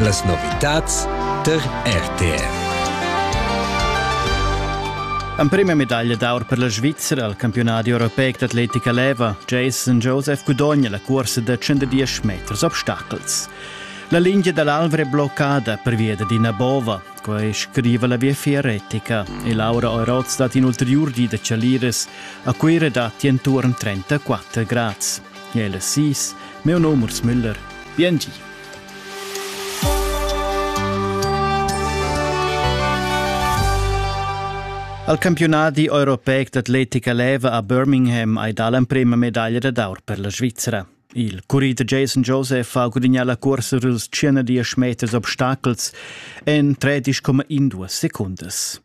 Las novitads tar RTR. Emprima medaglia d'aur per la Svizzera al campiunadi europeic d'atletica leva. Jason Joseph gudogna la cursa da 110 meters obstacels. La linea dall'Alvra è bloccada pervia d'ina bova. Quai scriva la Viefia Retica e Laura Euroz dat in ulteriur di da Chalires a Cuira datti entorn 34 grads. El es sis, meu nom Urs Müller, biengi. Al campionadi europeic d'atletica leva a Birmingham hai dà l'emprema medaglia d'aur per la Svizzera. Il currider Jason Joseph ha gudignà la cursa dels 110 meters obstacels en 13,12 secundas.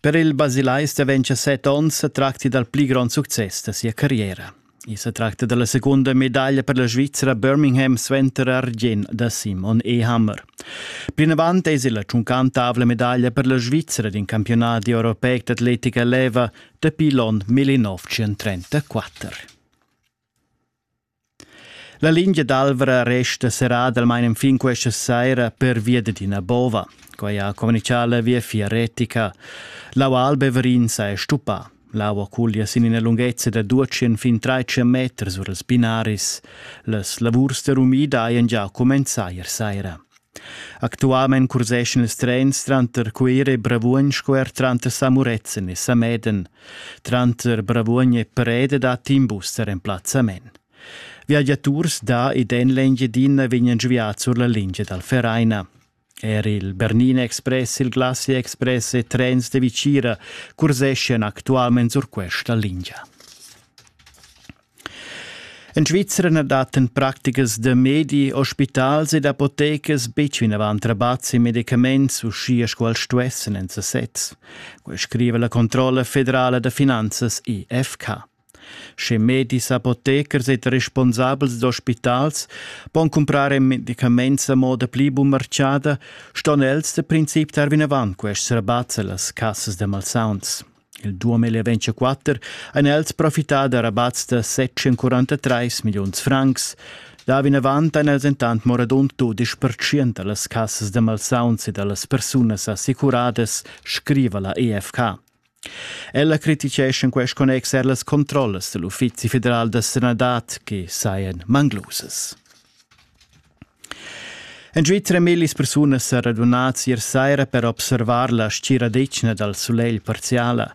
Per il basilais da 27 onns se tracti dal pli grond success da sia carriera. I se tracta della seconda medaglia per la Svizzera Birmingham suenter argient da Simon Ehammer. Plinavant es la tschuncantavla medaglia per la Svizzera d'in campionat europeic d'atletica leva dapi l'on 1934. La lingia d'Alvra resta serradalmain enfin questa saira pervia dad ina bova. Quai ha communitgà la Viafier retica. L'aua alba Everinsa è stuppà. L'aua cuglia sin ina lunghezza da 200 fin 300 meters sur els binaris. Las lavurs da rumida hajan già cumenzà ier saira. Actualmein curseschan ils trens tranter Cuira e Bravuogn sco er tranter Samuretzen e Sameden. Tranter Bravuogn e Preda dat in bus der emplazzament. Viagiaturs da ed en l'Engiedina vegnan giuviads sur la lingia dal Vereina. Er il Bernina Express, il Glacia Express e trens de Vicira curseschian actualment sur questa linea. En Svizra na dattan practicas da medi, ospitals ed apotecas betg vinavant rabats e medicaments, uschia sco els stuessan en sasez. Quai scriva la controlla federala da finanzas IFK. Sche medis, apotecers ed responsabels d'ospitals pon cumprar medicaments a moda pli bunmarciada, ston els da princip tar vinavant quests rabats a las cassas da malsauns. Il duom e leventscha quatter ein els profità da rabats da 743 milliuns francs. Da vinavant ein els entant mo radund dudisch pertschient dallas cassas da malsauns e dallas persunas assicuradas, scriva la EFK. Ella critichescha in quest connex er las controllas dell'Uffizi federal da sanadad che sajan manglusas. En giu tremellis persunas sa radunat ier saira per observar la stgiradetgna dal sulegl parziala.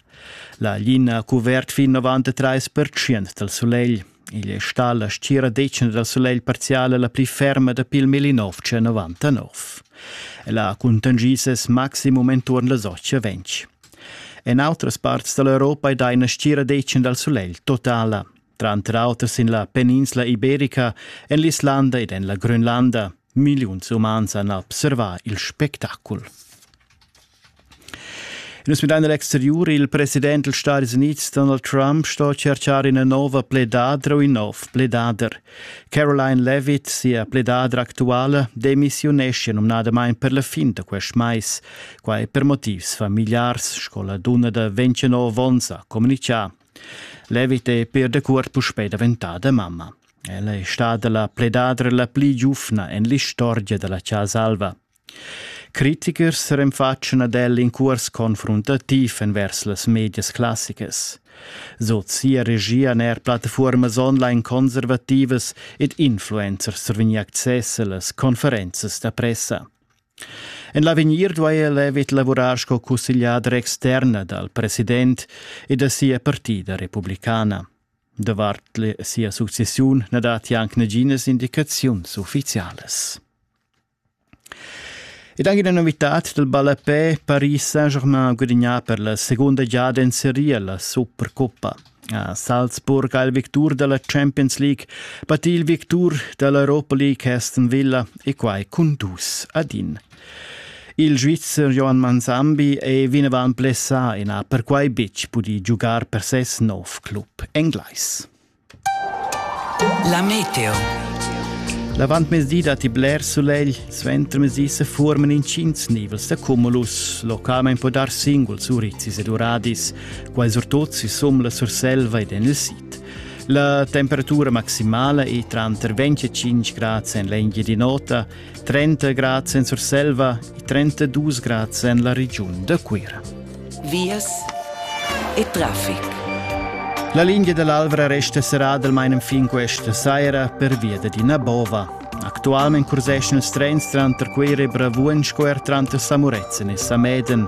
La glina ha cuvert fin 93 dal sulegl. Igl è stà la stgiradetgna dal sulegl parziala la pli ferma dapi il 1999. Ella ha cuntangi ses maximum enturn las 8.20. En autras parts da l'Europa è da ina stgiradetgna dal sulegl totala. tranter auter sin la peninsla iberica, en l'Islanda ed en la Grönlanda. Milliuns umans han observà il spectacul. Nus midain l'exteriur. Il president dals Stati Units, Donald Trump, sto cercar ina nova pledadra u in nov pledader. Caroline Levitt, sia pledadra actuala, demissiunescia numnadamain per la fin da quest mais. Quai per motivs familiars, sco la dunna da 29 onns ha communitgà. Levit è per decuort puspè daventada mamma. Ella è stada la pledadra la pli giufna en l'istorgia da la Chasa Alva. Critikers renfatschan ad el in curs confruntativ envers las medias classicas. Sot sia regia er plattafuormas online conservativas ed influencers survegni access a las conferenzas da pressa. En l'avegnir duai el evit lavurar sco cussegliader externa dal president e da sia partida republicana. Davart sia successiun na datti anc naginas indicaziuns uffizialas. Ed anche una novità del ballapé Paris Saint-Germain guadagnà per la seconda giada in Serie la Supercoppa. A Salzburg ha il victur da la Champions League battì il victur da l'Europa League Aston Villa e quai cun dus ad in. Il Svizzer Johan Manzambi è vinavant blessà e n'ha perquai betg pudì giugar per ses nov club englais. La Meteo. L'avantmezdi datti bler sulegl, suentermezdi se forman intschins nivels da cumulus. Localmain po dar singuls urizis ed uradis. Quai surtut sisum la Surselva ed en il sid. La temperatura maximala è tranter 25 grads en l'Engiadin'Ota, 30 grads en Surselva e 32 grads en la regiun da Cuira. Vias e traffic. La linea dell'Alvra resta serrada almain fin questa saira per via d'Adina Bova. Actualmente curseschen els trens tranter Cuira e Bravuogn sco er tranter Samuretzen e Sameden.